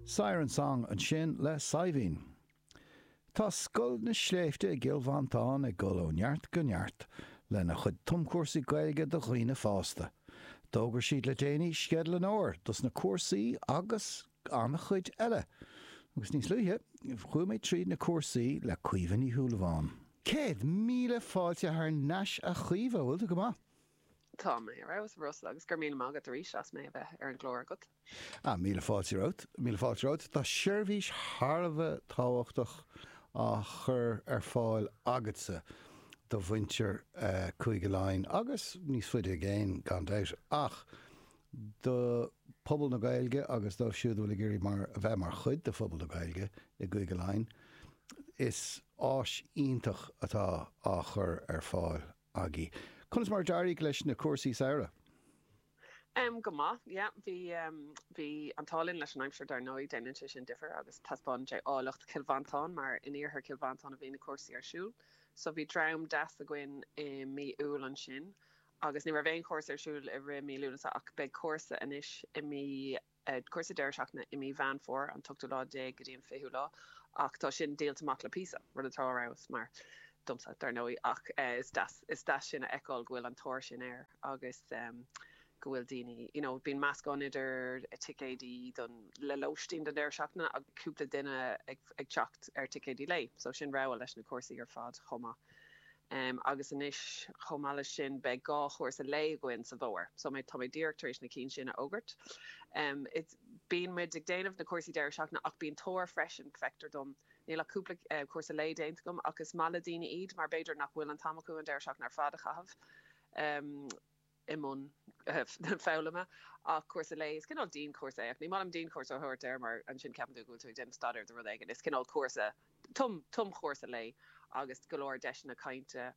Siren Song ansin le Saidhbhín. Tá Scoil na Sléibhte i gCill Mhantáin ag dul ó neart go neart lena chuid tumchúrsaí Gaeilge do dhaoine fásta. D'fhógair siad le déanaí sceideal an fhómhair dos na cúrsaí agus an-chuid eile. Agus níos luaithe, chuaigh mé tríd na cúrsaí le Caoimhe Ní Shúilleabháin. Céad míle fáilte thar n-ais a Chaoimhe, bhfuil tú go maith? Tá mé ar fheabhas, a Russell, agus go raibh míle maith agat arís as mé a bheith ar an gclár agat. Ah, míle fáilte romhat, míle fáilte romhat. Tá seirbhís thar a bheith tábhachtach á chur ar fáil agatsa do mhuintir Chúige Laighean agus níos faide i gcéin, gan dabht, ach do phobal na Gaeilge agus dóibh siúd go bhfuil ag iarraidh a bheith mar chuid de phobal na Gaeilge i gCúige Laighean. Is áis iontach atá á chur ar fáil agat. agat. Conas mar a d'éirigh leis na cúrsaí samhraidh? Um, go maith, yeah. Bhí, um, bhí an t-ádh linn leis an aimsir dar ndóigh, déanann sé sin difir agus taispeánann sé áilleacht Chill Mhantáin mar in iarthar Chill Mhantáin a bhí na cúrsaí ar siúl. So bhí dream deas againn i mí Iúil ansin agus ní raibh aon chúrsa ar siúl i rith mí Lúnasa ach beidh cúrsa anois i mí cúrsa deireadh seachtaine i mí Mheán Fómhair, an t-ochtú lá déag go dtí an fichiú lá, ach tá sin díolta amach le píosa, rud atá ar fheabhas, mar, domsa, dar ndóigh, ach is deas, is deas sin a fheiceáil go bhfuil an tóir sin air agus go bhfuil daoine, you know, bíonn meascán idir ticéidí don, le lóistín don deireadh seachtaine agus cúpla duine ag, ag teacht ar ticéidí lae, so sin rogha leis na cúrsaí ar fad chomh maith. agus anois chomh maith leis sin beidh dhá chúrsa lae againn sa bhfómhar so tá mé díreach tar éis na cinn sin a fhógairt em bíonn muid ag déanamh na cúrsaí deireadh seachtaine ach bíonn tóir freisin feictear dom níl ach cúpla cúrsa lae déanta agam ach is maith le daoine iad mar b'fhéidir nach bhfuil an t-am acu an deireadh seachtaine ar fad a chaitheamh i mbun foghlama ach cúrsa lae, is cineál dianchúrsa é ach ní maith liom dianchúrsa a thabhairt air mar ansin ceapann tú go bhfuil tú ag déanamh staidéir do rud éigin, is cineál cúrsa, tumchúrsa lae agus go leor deiseanna cainte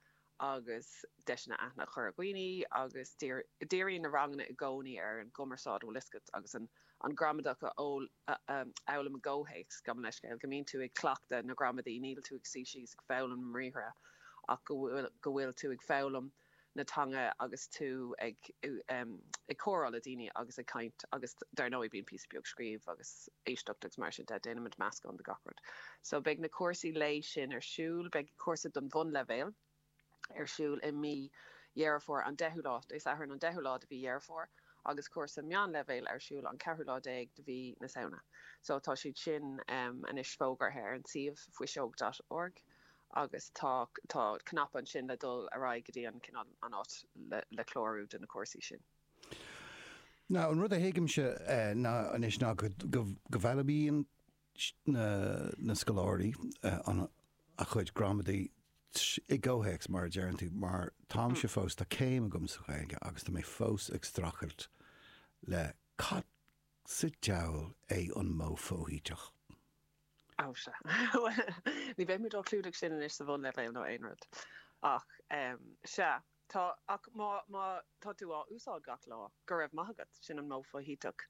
agus deiseanna aithne a chur ar dhaoine agus díríonn na ranganna i gcónaí ar an gcumarsáid, an bhfuil 'fhios agat, agus an ghramadach a fhoghlaim i gcomhthéacs, gabh mo leithscéal, go mbíonn tú ag cleachtadh na gramadaí, níl tú ag suí síos ag foghlaim na mbriathra ach go bhfuil tú ag foghlaim. na teanga agus tú ag ag comhrá le daoine agus ag caint agus dar ndóigh bíonn píosa beag scríobh agus éisteacht agus mar sin de déanaimid meascán de gach rud so beidh na cúrsaí lae sin ar siúl beidh cúrsa don bhunleibhéal ar siúl i mí Dheireadh Fómhair an 10ú lá Dé Sathairn an 10ú lá de mhí Dheireadh Fómhair agus cúrsa meánleibhéil ar siúl an 4ú lá déag de mhí na Samhna so tá siad sin anois fógartha ar an suíomh fuiseog dot org. agus tá tá cnaipe ansin le dul ar aghaidh go dtí an cineál an áit le le clárú do na cúrsaí sin. Now an rud a thuigimse ná anois ná go go bhfoghlaimíonn na na scoláirí an a chuid gramadaí i gcomhthéacs mar a deireann tú, mar táimse fós tá céim agam sa Ghaeilge agus tá mé fós ag strachailt le cad sa diabhal é an modh foshuiteach? Ó sea. Ní bheidh muid á chlúdach sin anois sa bhunleibhéal nó aon rud. Ach sea, tá, ach má tá tú á úsáid gach lá, go raibh maith agat, sin an modh foshuiteach.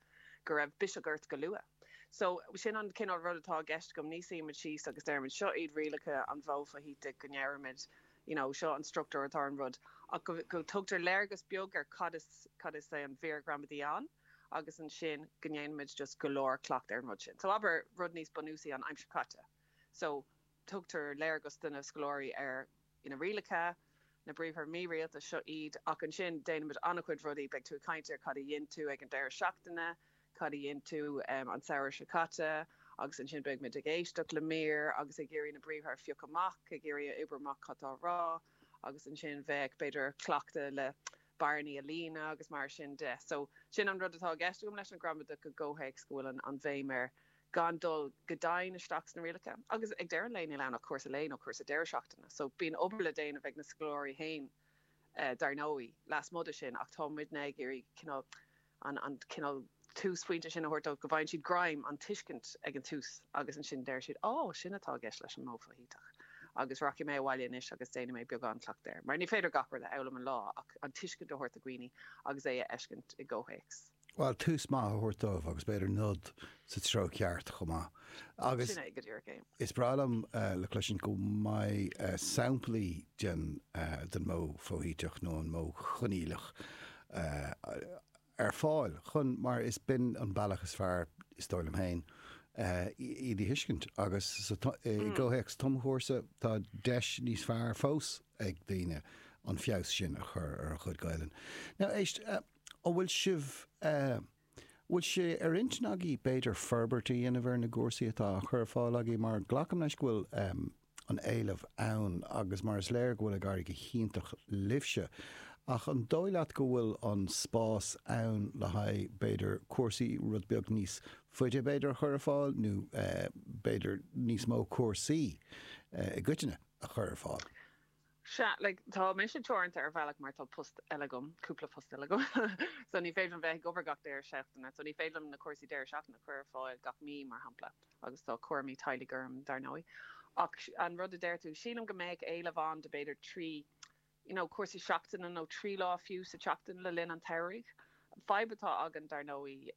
Go raibh biseach ort go luath. So, sin an cineál rud atá i gceist agam, ní suímid síos agus deirimid seo iad rialacha an mhodh fhoshuitigh go ndeirimid you know seo an struchtúr atá ar an rud, ach go dtugtar léargas beag ar cad is, cad is é an mhír ghramadaí ann. agus ansin go ndéanaimid just go leor cleachtaidh ar an rud sin. So abair rud níos bunúsaí an aimsir chaite. So tugtar léargas do na scoláirí ar na rialacha, na briathra mírialta, seo iad, ach ansin déanaimid an-chuid rudaí, beidh tú ag caint ar cad a dhein tú ag an deireadh seachtaine, cad a dhein tú an samhradh seo caite agus ansin beidh muid ag éisteacht le mír agus ag iarraidh na briathra a phiocadh amach, ag iarraidh a oibriú amach cad tá á rá. agus ansin bheadh, b'fhéidir, cleachtadh le bearnaí a líonadh agus mar sin de. So, sin an rud atá i gceist agam leis an ghramadach i gcomhthéacs go bhfuil an bhéim ar gan dul go domhain isteach sna rialacha. Agus ag deireadh an lae níl ann ach cúrsa lae nó cúrsa deireadh seachtaine. So, bíonn obair le déanamh ag na scoláirí féin, dar ndóigh, lasmuigh de sin ach tá muidne ag iarraidh cineál, an cineál túsphointe sin a thabhairt dóibh go bhfaigheann siad greim, an tuiscint ag an tús agus ansin deir siad Ó, sin atá i gceist leis an modh foshuiteach agus rachaidh mé abhaile anois agus déanfaidh mé beagán cleachtaidh air. Mar ní féidir gach rud a fhoghlaim in aon lá ach an tuiscint a thabhairt do dhaoine agus é a fheiscint i gcomhthéacs. Bhuel, tús maith a thabhairt dóibh agus b'fhéidir nod sa treo ceart chomh maith. Agus Sin é go díreach é. is breá liom a chloisint go mbeidh samplaí den modh foshuiteach nó an modh coinníollach ar fáil chun, mar is b'in an bealach is fearr, is dóigh liom féin, iad a thuiscint agus i gcomhthéacs tumchúrsa tá deis níos fearr fós ag daoine an feabhas sin a chur ar a chuid Gaelainn. Now, éist, an bhfuil sibh. Bhfuil sé ar intinn agaibh b'fhéidir forbairt a dhéanamh ar na gcúrsaí atá á chur ar fáil agaibh mar glacaim leis go bhfuil an éileamh ann agus mar is léir go bhfuil ag éirí go hiontach libhse ach an dóigh leat go bhfuil an spás ann le haghaidh b'fhéidir cúrsaí rud beag níos faide b'fhéidir a chur ar fáil nó b'fhéidir níos mó cúrsaí i gcoitinne a chur ar fáil? Sea, like, tá mise teoranta ar bhealach mar tá post eile agam, cúpla post eile agam, so ní féidir liom bheith ag obair gach deireadh seachtaine, so ní féidir liom na cúrsaí deireadh seachtaine a chur ar fáil gach mí, mar shampla, agus tá cúramaí teaghlaigh orm, dar ndóigh. Ach an rud a deir tú, sílim go mbeadh éileamh ann do b'fhéidir trí, you know, cúrsaí seachtaine nó trí lá fiú sa tseachtain le linn an tsamhraidh. An fadhb atá againn dar ndóigh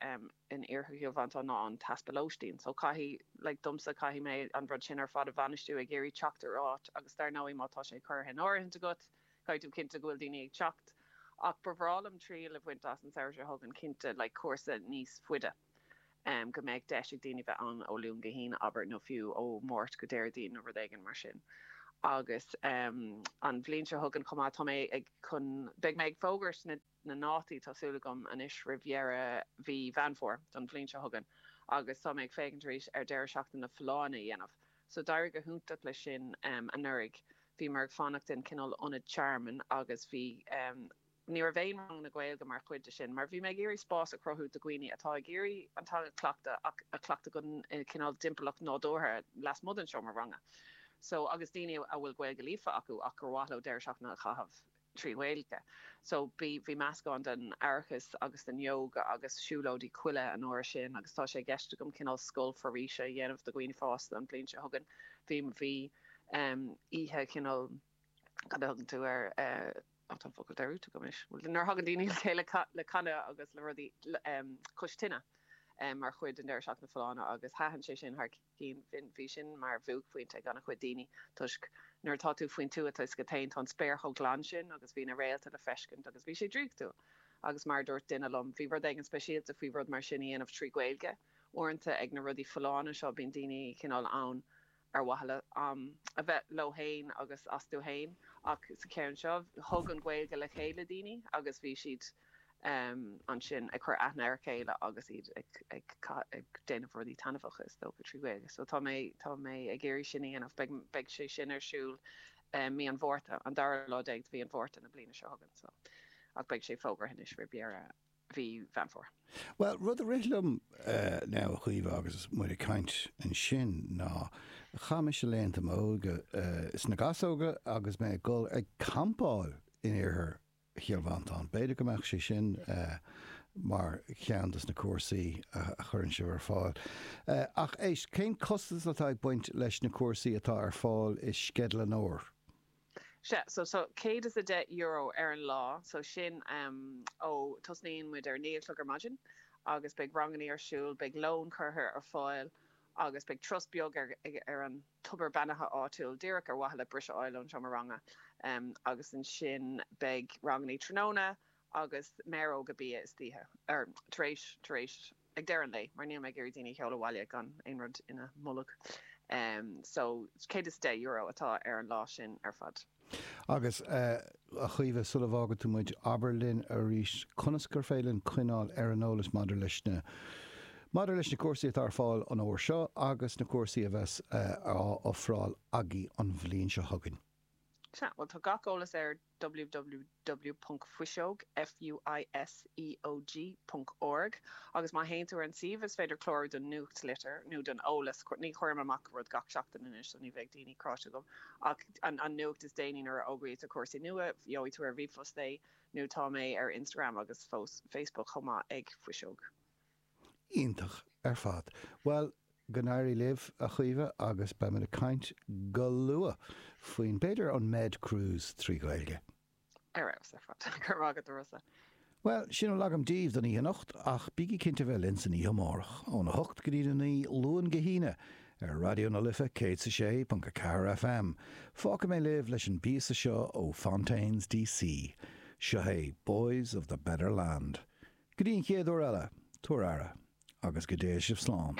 in iarthar Chill Mhantáin ná an t-easpa lóistín so caithfidh, like domsa, caithfidh mé an rud sin ar fad a bhainistiú, ag iarraidh teacht ar áit agus dar ndóigh má tá sé curtha in áirithint agat caithfidh tú cinntiú go bhfuil daoine ag teacht ach ba bhreá liom triail a bhaint as an samhradh seo chugainn cinnte, like cúrsa níos faide, go mbeadh deis ag daoine bheith ann ó Luan go hAoine abair nó fiú ó Mháirt go Déardaoin nó rud éigin mar sin agus ehm an bhliain seo chugainn chomh maith tá mé ag chun, beidh mé ag fógairt na. na ndátaí tá súil agam anois roimh dheireadh mhí Mheán Fómhair don bhliain seo chugainn agus tá mé ag féachaint arís ar deireadh seachtaine na Folláine a dhéanamh so d'éirigh go hiontach leis sin anuraidh bhíomar ag fanacht i gcineál ionad tearmainn agus bhí ní raibh aon ranganna Gaeilge mar chuid de sin mar bhí mé ag iarraidh spás a chruthú do dhaoine atá ag iarraidh an teanga cleachtadh ach a chleachtadh i gcineál timpeallacht nádúrtha lasmuigh den seomra ranga so agus daoine a bhfuil Gaeilge líofa acu ach gur mhaith leo deireadh seachtaine a chaitheamh i trí Ghaeilge. So bhí, bhí meascán den aireachas agus den yoga agus siúlóidí coille an uair sin agus tá sé i gceist agam cineál scoil foraoise a dhéanamh do dhaoine fásta an bhliain seo chugainn. Bhí, bhí ehm oíche chineál, cad a thugann tú air eh, ó tá an focal caillte agam anois, bhuel nuair a thagann daoine le chéile le canadh agus le rudaí, ehm cois tine, ehm mar chuid den deireadh seachtaine folláine agus thaitin sé sin thar cinn. Bhí sin mar bhuaicphointe ag an-chuid daoine toisc nuair atá tú faoin tuath is go háirithe ann tá an spéir chomh glan sin agus bhí na réalta le feiscint agus bhí sé draíochtúil agus mar a dúirt duine liom bhí rud éigin speisialta faoi rud mar sin a dhéanamh trí Ghaeilge. Uaireanta ag na rudaí folláine seo bíonn daoine cineál ann ar mhaithe le a bheith leo féin agus astu féin ach sa cheann seo thug an Ghaeilge le chéile daoine agus bhí siad ansin ag cur aithne ar a chéile agus iad ag déanamh rudaí taitneamhach, is dócha, trí Ghaeilge. So tá mé, tá mé ag iarraidh sin a dhéanamh. Beidh, beidh sé sin ar siúl mí an Mhárta, an dara lá déag de mhí an Mhárta na bliana seo chugainn. So, ach beidh sé fógartha anois roimh dheireadh mhí Mheán Fómhair. Bhuel, rud a rith liom, now, a Chaoimhe, agus muid ag caint ansin, ná chaith mise laethanta m'óige sna gasóga agus mé ag dul ag campáil in iarthar Chill Mhantáin. B'fhéidir go mbeadh sé sin mar cheann de na cúrsaí a chuireann sibh ar fáil. Ach éist, cén costas atá ag baint leis na cúrsaí atá ar fáil i sceideal an fhómhair? Sea, so tá €110 ar an lá, so sin ó, tosnaíonn muid ar a naoi a chlog ar maidin agus beidh ranganna ar siúl, beidh lón curtha ar fáil agus beidh turas beag ar an. tobar beannaithe áitiúil díreach ar mhaithe le briseadh a fháil ón seomra ranga agus ansin beidh rangannaí tráthnóna agus méaróga bia istoíche tar éis tar éis ag deireadh an lae mar níl mé ag iarraidh daoine a sheoladh abhaile gan aon rud ina mbolg so €110 atá ar an lá sin ar fad. Agus, a Chaoimhe, sula bhfágann tú muid, abair linn arís conas is féidir linn coinneáil ar an eolas maidir leis na maidir leis na cúrsaí atá ar fáil an Fhómhair seo agus na cúrsaí a bheas á ofráil agaibh an bhliain seo chugainn. Sea, bhuel, tá gach eolas ar ww. www.fuiseog, F-U-I-S-E-O-G, ponc org agus má théann tú ar an suíomh is féidir clárú don nuachtlitir nó don eolas, ní chuirim amach rud gach seachtain anois so ní bheidh daoine cráite agam ach an nuacht is déanaí nuair a fhógraítear cúrsaí nua gheobhaidh tú ar ríomhphost é nó tá mé ar Instagram agus Facebook chomh maith ag fuiseog. Iontach ar fad. Bhuel, go n-éirí libh, a Chaoimhe, agus beimid ag caint go luath faoin, b'fhéidir, an Med Cruise trí Ghaeilge. Ar fheabhas ar fad. Go raibh maith agat, a Rossa. Bhuel, sin a bhfuil agam daoibh don oíche anocht, ach bígí cinnte bheith linn san oíche amárach, óna hocht go dtí'n a naoi, Luan go hAoine, ar Raidió na Life 106.4 FM. Fágfaidh mé libh leis an bpíosa seo ó Fontaines DC. Seo é Boys in the Better Land. Go dtí an chéad uair eile, tugaigí aire agus go dté sibh slán.